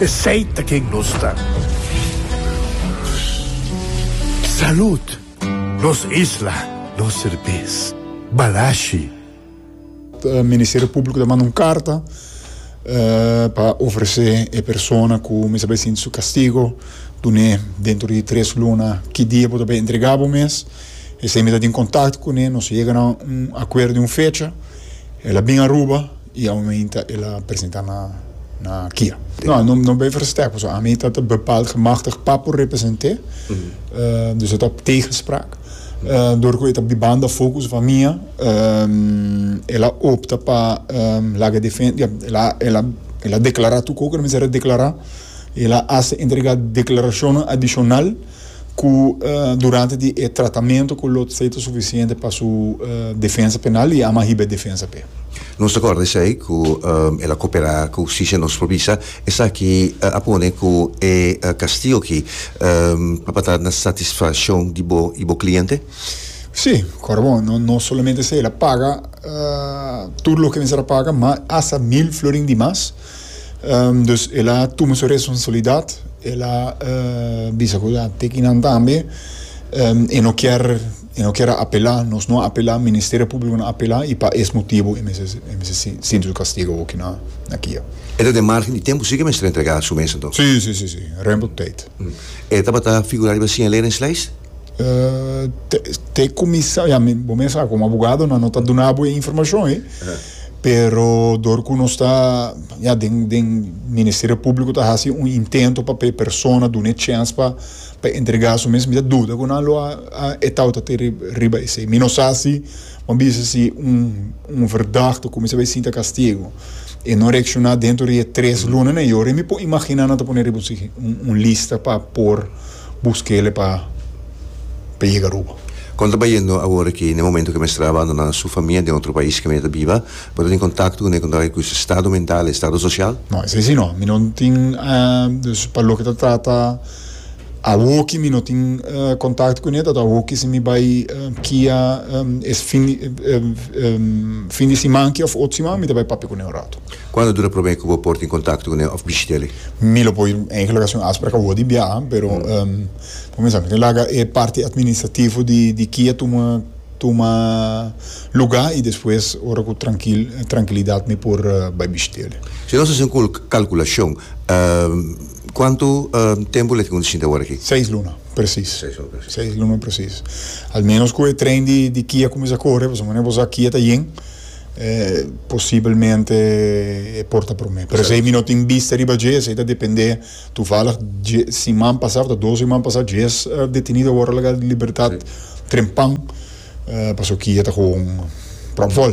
Esey ta ken nos ta. Salud. Nos isla, nos serbes. Balashi. Ministerio Públiko ta manda un karta pa ofresé e persona ku mester bai sinti su kastigo dun'é dentro di tres luna ki dia bo ta bai entregá bo mes. Esei mi ta tin kontakto kuné, nos yega na un akuerdo di un fecha el a bin Aruba. Y aumenta el a presenta na na kia. No, no, no be versterk, pasobra ami ta ta bepaald gemachtigd pa por represent'é, dus e ta op tegenspraak. Door cu e ta di banda focus van mia, el a opta pa laga defen, ja, el a, el a, el a declara tu cu cu ta mester a declara, el a hace entrega declaracionnan adicional, ku durante di e tratamentu ku lo tsei ta sufisiente pa su defensa penal i ama hiba e defensa p'e. Nos ta kòrda esei ku el a koperá ku hustisia. Nos por bisa esaki a pone ku e kastigu aki tabata na satisfashon di bo i bo kliente? Sí, kòrda bon, no solamente esei, el a paga tur loke mester a paga, ma asta mil florin di mas. Dus el a tuma su responsabilidat, el a bisa ku a teki nan tambe, e no kier, e no kier a apelá, nos no a apelá, Ministerio Públiko no a apelá, i pa es motibu e mester, e mester sinti su kastigu aki na kia. E ta den margen di tempu si ku e mester entregá su mes anto? Si, si, si, si, rempo tèit. E tabata figurá riba siñaleringslijst? te kumisa ya mi bo mes sa komo abogado nan no ta duna bo e informashon ei pero dor ku nos ta ya den den ministerio publiko ta hasi un intento pa e persona duna e chèns pa pa entrega su mes mi ta duda ku nan lo a a etau ta te riba esei mi no sa si bo a bisa si un un verdagte kumisa bai sinta kastigu e no reakshona dentro di e tres lunanan i ora mi por imagina nan ta pone riba un lista pa por Bus kele pa pa yega Aruba. Kon ta bayendo awor aki n'e momento ke mester a abandoná su famia den otro pais ke mi ta biba? Bo ta tin kontakto ku Neko Ndoye ku su estado mental i estado sosial? No, esei si no. Mi no tin, dus pa loke ta trata awor ki mi no tin kontakto ku ne tabata awor ki si mi bai kia es fin di siman aki òf otro siman mi ta bai papia ku ne un ratu. Cuan lo dura prome cu bo por tin contacto cu ne of bishitele? Mi lo poi enkele ocasion asper a cabo di biaha, pero bo mester tin laga e parti administrativo di kia tuma tuma luga y despues ora cu trankil trankilidad mi por bay bishitele. Si nos haci un calculacion, cuanto tempo leke cu nos shinti awor aki? Seis luna precies. Seis luna precies. Seis luna precies. Al menos cu e tren di kia cuminsa core, pasobra bo sa kia ta yen. Posibelmente e por ta prome. Pero esei mi no tin bista riba dje, esei ta depende. Tuvalig dje siman pasá, tabata dos siman pasá, djes detenido a wòrdu laga di libertat trempan pasobra ki e ta gewoon pròp vòl.